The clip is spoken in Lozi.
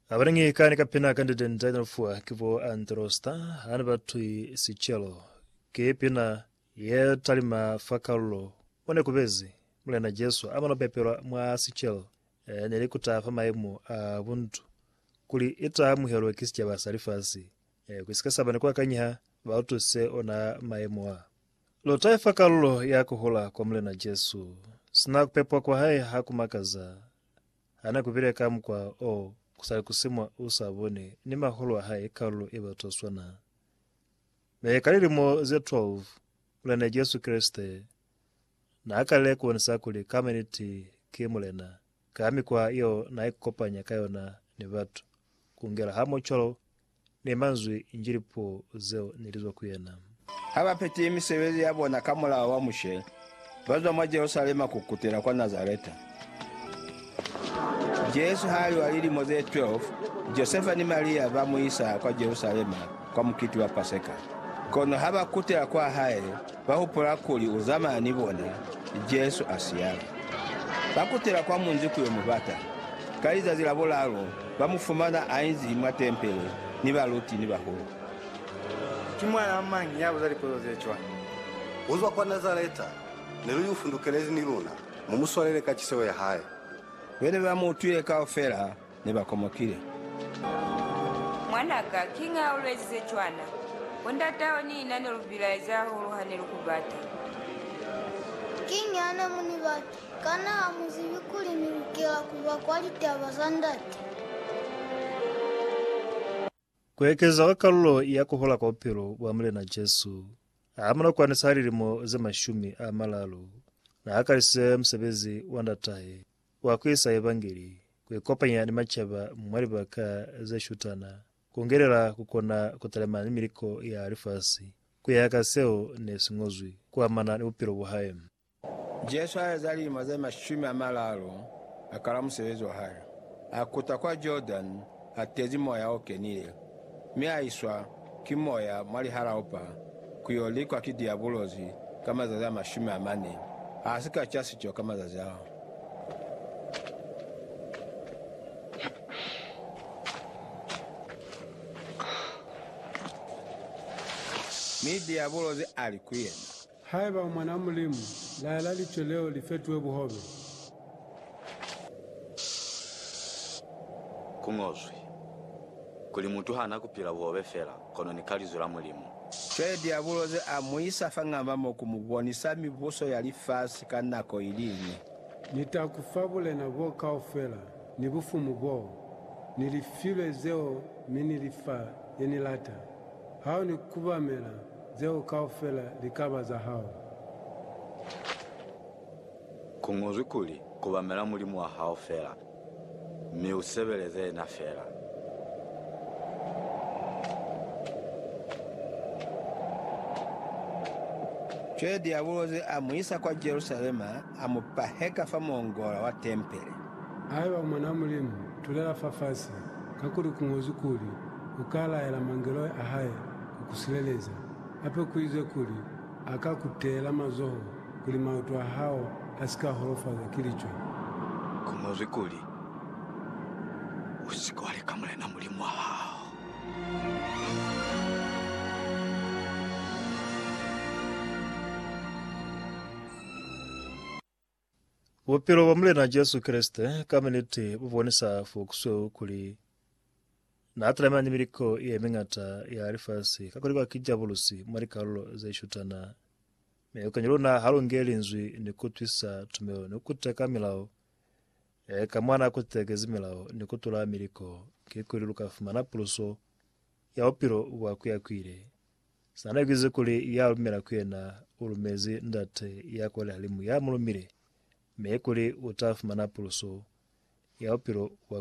Abanengi ka ni kapina ka ndete nda ni fuwa ki bo Antrosta ha ni batwi sicelo. Ki pina ye talima fa kalulo mo ne kubezi Mulena Jesu amana pepelwa mwa sicelo eh, ne li kuta fa maimo a buntu kuli ita amuhelwe ki sicaba sa lifasi eh, kusika saba ni kuakanyiha ba utwise ona maimo a. Lu taifa kalulo ya ku hula kwa Mulena Jesu. Sina ku pepwa kwa hae ha ku makaza. Ha ne ku bile ka mukwa o ku sa ikusi mwa u sa boni ni mahulu a hae kalulo ye bata swana. Mi ka lilimo ze 12, Mulena Jesu Kreste n'a kalile ku bonisa kuli ka maniti ki Mulena ka mikwa yeo n'a ikukopanya ka yona ni batu, ku ngela hamoho cwalo Ne manzwi nji lipuo zeo ne li zwa ku yena. Ha ba petile misebezi ya bona ka mulao wa Mushe, ba zwa mwa Jerusalema ku kutela kwa Nazareta. Jesu ha li wa lilimo ze 12, Josefa ni Maria ba mu isa kwa Jerusalema kwa mukiti wa Paseka. Kono ha ba kutela kwa hae, Ba hupula kuli u zamaya ni bona, Jesu a siyale. Ba kutela kwa munzi ku yo mu bata. Ka lizazi la bulalu, ba mu fumana a inzi mwa tempele ni baluti ni bahulu. Ki mwanaa mañi ya buza lipotso ze cwana? U zwa kwa Nazareta, ne lu y'u fundukelezi ni luna, mu mu swalele ka ciseho ya hae. Be ne ba mu utwile kaufela. ne ba komokile. Mwan'a ka, kiñi ha u lu ezize cwana? Bo ndat'aho ni na ne lu bilaezi hahulu ha ne lu ku bata. Kiñi ha ne mu ni bata? Kana ha mu zibi kuli ni lukela ku ba kwa litaba za Ndate? Ku ekeza kwa kalulo ya ku hola kwa bupilo bwa Mulena Jesu, hamuna kwani sa lilimo ze mashumi a malalu, na hakalisize musebezi wa Ndatahe wa ku isa Evangeli, ku ikopanya ni macaba mwa libaka ze shutana, ku ngelela ku kona ku talimana ni miliko ya lifasi ku ya ka seo ne si ñozwi ku amana ni bupilo bwa hae. Jesu aeza lilimo ze mashumi amalalu akala musebezi wahae. Akuta kwa Jordan atezi Moya Okenile, mi aiswa ki Moya mwa lihalaupa kuyo likwa ki Diabulosi ka mazazi amashumi amane. Asika ca sico ka mazazi ao. Mi Diabulosi ali kuyena, Haiba u Mwan'a Mulimu, laela licwe leo li fetuhe buhobe. Ku ñozwi kuli, Mutu ha na ku pila buhobe fela, kono ni ka Linzwi la Mulimu. Cwale Diabulo ze a mu isa fa ng'amba mo ku mu bonisa mibuso ya lifasi ka nako i li ñwi. Ni ta ku fa bulena boo kaufela, ni bufumu boo, ni lifilwe zeo, mi ni li fa ye ni lata. Ha u ni kubamela, zeo kaufela li ka ba za hao. Ku ñozwi kuli, Kubamela Mulimu wa hao fela, mi u sebeleze yena fela. Cwale Diabulosi a mu isa kwa Jerusalema, a mu paheka fa muongola wa tempele. Haiba u Mwan'a Mulimu, tulela fafasi, kakuli ku ñozwi kuli, U ka laela mangeloi a hae ku ku sileleza, hape ku izwe kuli, A ka ku teela mazoho, kuli maoto a hao a si ka holofazwa ki licwe. Ku ñozwi kuli, U si ke wa leka Mulena Mulimu wa hao. Bupilo bwa Mulena Jesu Kreste ka miniti bu bonisa fo ku sweu kuli n'a talamana ni miliko ye miñata ya lifasi kakuli kwa ki jabulusi mwa likalulo ze shutana. Mi lukani luna ha lu nge Linzwi ni ku twisa tumelo ni ku teka milao ye ka mwa n'a kutekezi milao ni ku tula miliko, kikuli lu ka fumana puluso ya bupilo bwa kuyakuile. Sana kize kuli ya lumela ku yena u lumezi Ndate ya kwa lihalimu ya mu lumile, mi kuli u ta fumana puluso ya bupilo bwa